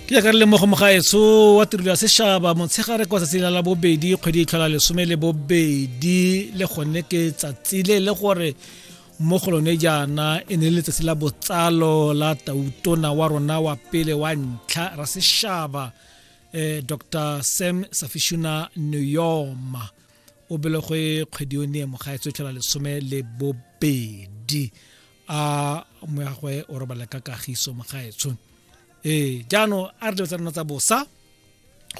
ke jaaka re lemogo mogaetso wa tirelo ya sešaba motshegare kwa tsatsi la bobedi kgwedi e tlhola lesome le bobedi le gone ke tsatsi le le gore mo go lone jaana e ne le letsatsi la botsalo la tautona wa rona wa pele wa ntlha ra sešaba eh, dr sam safishuna neyoma o belegwe kgwedi yone mogaetso e tlhola lesome le bobedi a moyagwe o robala ka kagiso mogaetsho ee jaanong a re dilo tsa rona tsa bosa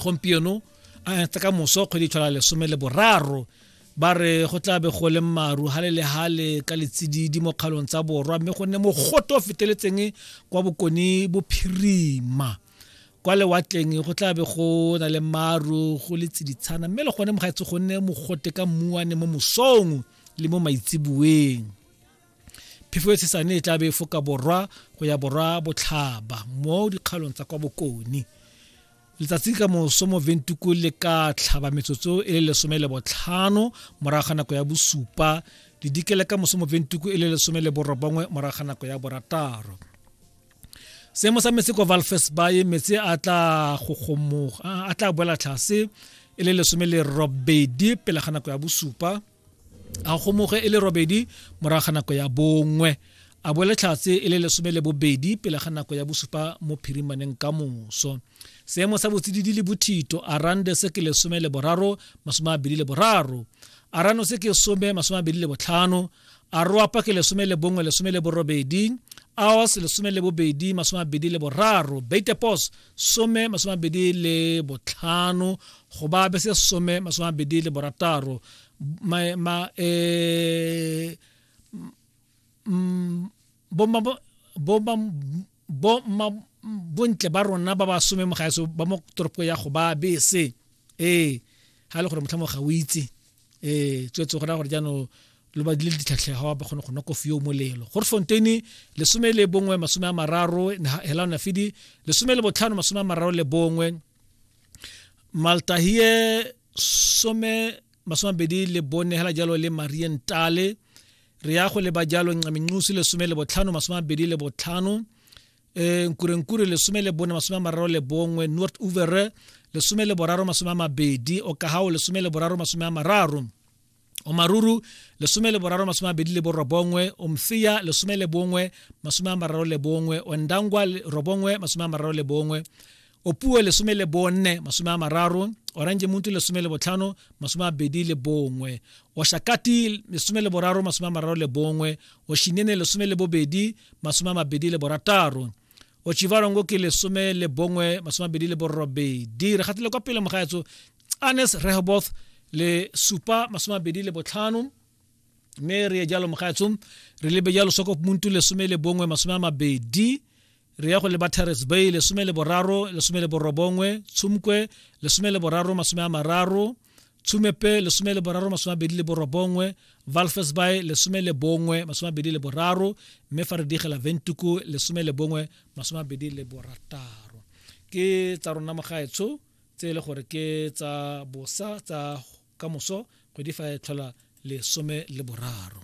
gompieno tsa ka moso kgwedi tshwana lesome le boraro ba re go tla be go le maru hale le hale ka letsididi mo kgalong tsa borwa mme go nne mogote o feteletseng kwa bokone bophirima kwa lewatleng go tla be go na le maru go le tsiditshana mme le gone mogaetse go nne mogote ka mmuane mo mosong le mo maitseboeng phefo e tshesane e tla be e foka borwa go ya borwa botlhaba mo dikgalong tsa kwa bokone letsatsi ka moso mo ventuku le ka tlhaba metsotso e le lesome le botlhano morago ga nako ya bosupa le dikele ka moso mo ventuku e le lesome le borobongwe morago ga nako ya borataro seemo sa metsi kwa valfes baye metsi a tla gogomoga a tla boela tlhase e le lesome le robedi pele ga nako ya bosupa a gomoge e le robedi morago ga nako ya bongwe a boele tlhatse e le lesome le bobedi pele ga nako ya bosupa mo phirimaneng ka moso seemo sa botsididi le bothito a rande se ke lesome le boraro masome a bedi le boraro a rano se ke some masome a bedi le botlhano a roapa ke lesome le bongwe lesome le borobedi aos lesome le bobedi masome a bedi le boraro beitepos some masome mabedi le botlhano go ba be se some masome mabedi le borataro ma, ma eh, mm, bo ma bo ma bo ma bontle ba rona ba ba some mogaeso ba mo toropo ya go ba bese ee ga e le gore motlha mo ga o itse ee tswetse gona gore jaanong lo ba dile ditlhatlhega ga ba kgone go nwa kofi yo molelo gore fontaine lesome le bongwe masome a mararo hela ona fidi lesome le botlhano masome a mararo le bongwe maltahie some masome a bedi le bone hela jalo le marientale re ya go leba jalo ncamincusi lesome le botlhano masome a bedi le botlhano e nkurenkure lesome le bone masome a mararo le bongwe north uvere lesome le boraro masome a mabedi okahao lesome le boraro masome a mararo omaruru lesome le boraro masome a mabedi le borobongwe omfeya lesome le bongwe masome a mararo le bongwe ondangwa robongwe masome a mararo le bongwe opuo lesome le bonne masome a mararo orange muntu lesome le botlhano masome a bedi le bongwe oshakati lesome le boraro masome a mararo le bongwe oshinene lesome le bobedi masome a mabedi le borataro ochivarongo ke lesome le bongwe masome a bedi le borobedi re gatile kwa pele mogaetso anes rehoboth le supa masome a bedi le botlhano mme re ye jalo mogaetsong re lebe jalo soko muntu lesome le bongwe masome a mabedi re ya go leba terrace bay lesome le boraro lesome le borobongwe tshumkwe lesome le boraro masome a mararo tshumepe lesome le boraro masome a bedi le borobongwe valfes bay lesome le bongwe masome a bedi le boraro mme fa re digela ventuku lesome le bongwe masome a bedi le borataro ke tsa rona mogaetsho tse e le gore ke tsa bosa tsa kamoso kgwedi fa e tlhola lesome le boraro